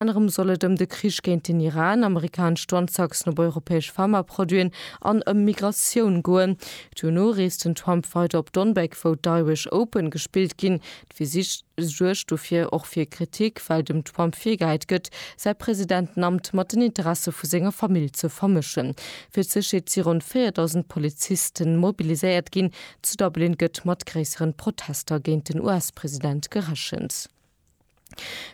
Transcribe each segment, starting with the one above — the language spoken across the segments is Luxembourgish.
Anerem soll et ëm de Krich géint den Iran, amerikanesch Douanetaxen op europäesch Pharmaproduiten an ëm Migratioun goen. Duerno reest den Trump weider op Donbeg, wou d'Irish Open gespillt ginn. D'Visitt suergt dofir och fir Kritik, well dem Trump virgehäit gëtt, säi Presidentenamt mat den Interesse vu senger Famill ze vermëschen. Fir d'Sécherheet si ronn 4.000 Poliziste mobiliséiert ginn. Zu Dublin gëtt mat gréisseren Protester géint den US-President gerechent.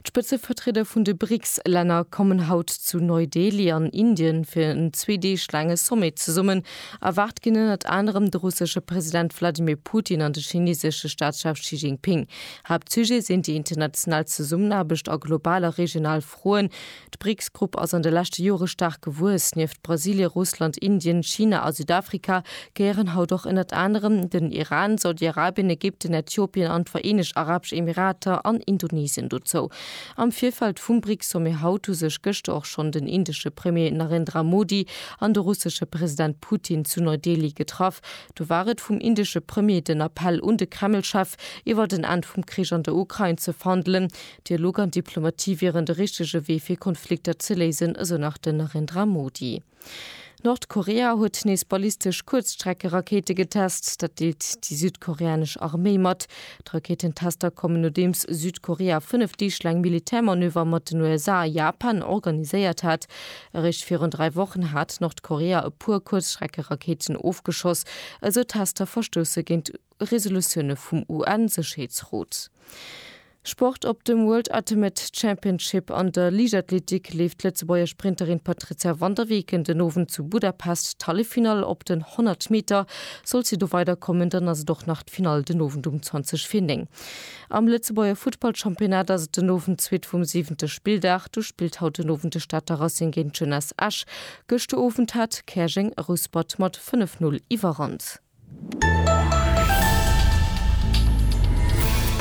D'Spëtzevertrieder vun de BRICS-Länner kommen haut zu Neu-Delhi an Indien fir en zwee Deeg laange Sommet zesummen. Erwaart ginn ënnert anerem de russesche President Wladimir Putin an de chineesesche Staatschef Xi Jinping. Haaptsujet sinn déi international Zesummenaarbecht a global a regional Froen. D'BRICS-Grupp ass an de leschte Jore staark gewuess. Nieft Brasilien, Russland, Indien, China a Südafrika gehéieren haut och ënnert anerem den Iran, Saudi-Arabien, Ägypten, Äthiopien an d'Vereenegt Arabesch Emirater an Indonesien dozou. Am Virfeld vum BRICS-Sommet haut hu sech gëschter och schonn den indesche Premier Narendra Modi an de russesche President Putin zu Neu-Delhi getraff. Do war et vum indesche Premier den Appell un de Kreml-Chef, iwwert en Enn vum Krich an der Ukrain ze verhandelen. Dialog an Diplomatie wieren de richtege Wee fir Konflikter ze léisen, esou nach den Narendra Modi. Nordkorea huet nees ballistesch Kuerzstreckerakéite getest. Dat deelt déi südkoreanesch Arméi mat. D'Rakéitentester kommen nodeems Südkorea fënnef Deeg laang Militärmanöver mat den USA a Japan organiséiert hat. Eréischt virun dräi Wochen hat Nordkorea e puer Kuerzstreckerakéiten ofgeschoss. Esou Tester verstousse géint Resolutioune vum UN-Sécherheetsrot. Sport, Op dem World Ultimate Championship an der Liichtathletik leeft d'Lëtzebuerger Sprinterin Patrizia van der Weken den Owend zu Budapest d'Halleffinall. Op den 100 Meter sollt si do weiderkommen, dann ass et och nach d'Finall den Owend um 20 vir 9. Am Lëtzebuerger Futtballchampionnat ass et den Owend d'zweet vum siwente Spilldag. Do spillt haut den Owend de Stater Racing géint d'Jeunesse Esch. Gëschter Owend hat Käerjeng Rouspert mat 5, 0 Iwwerhand.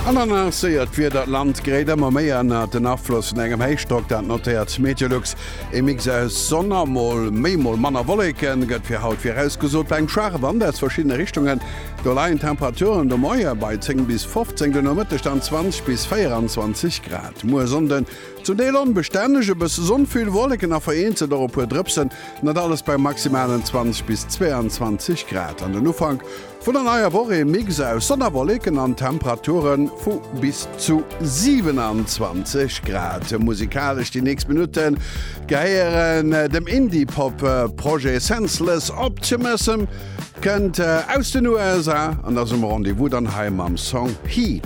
An dann ass séier d'Wieder d'Land gréit ëmmer méi ënnert den Afloss vun engem Héichdrock, dat notéiert d'MeteoLux. Ee Mix aus Sonn a mol méi mol manner Wolleke gëtt fir haut virausgesot. Bei engem schwaache Wand aus verschiddene Richtungen do leien d'Temperaturen de Moie bei 10 bis 15, de Nomëtteg dann 20 bis 24 Grad. Muer Sonnden Zum Deel onbestänneg, e bësse Sonn, vill Wolleken a vereenzelt och e puer Drëpsen, dat alles bei maximalen 20 bis 22 Grad. An den Ufank vun der neier Woch ee Mix aus Sonn a Wolleken an Temperature vu bis zu 27 Grad. Musikalesch déi nächst Minutte gehéieren dem Indie-Pop Projet Senseless Optimism, kënnt aus den USA an ass um Rendez-vous dann hei mam Song Heat.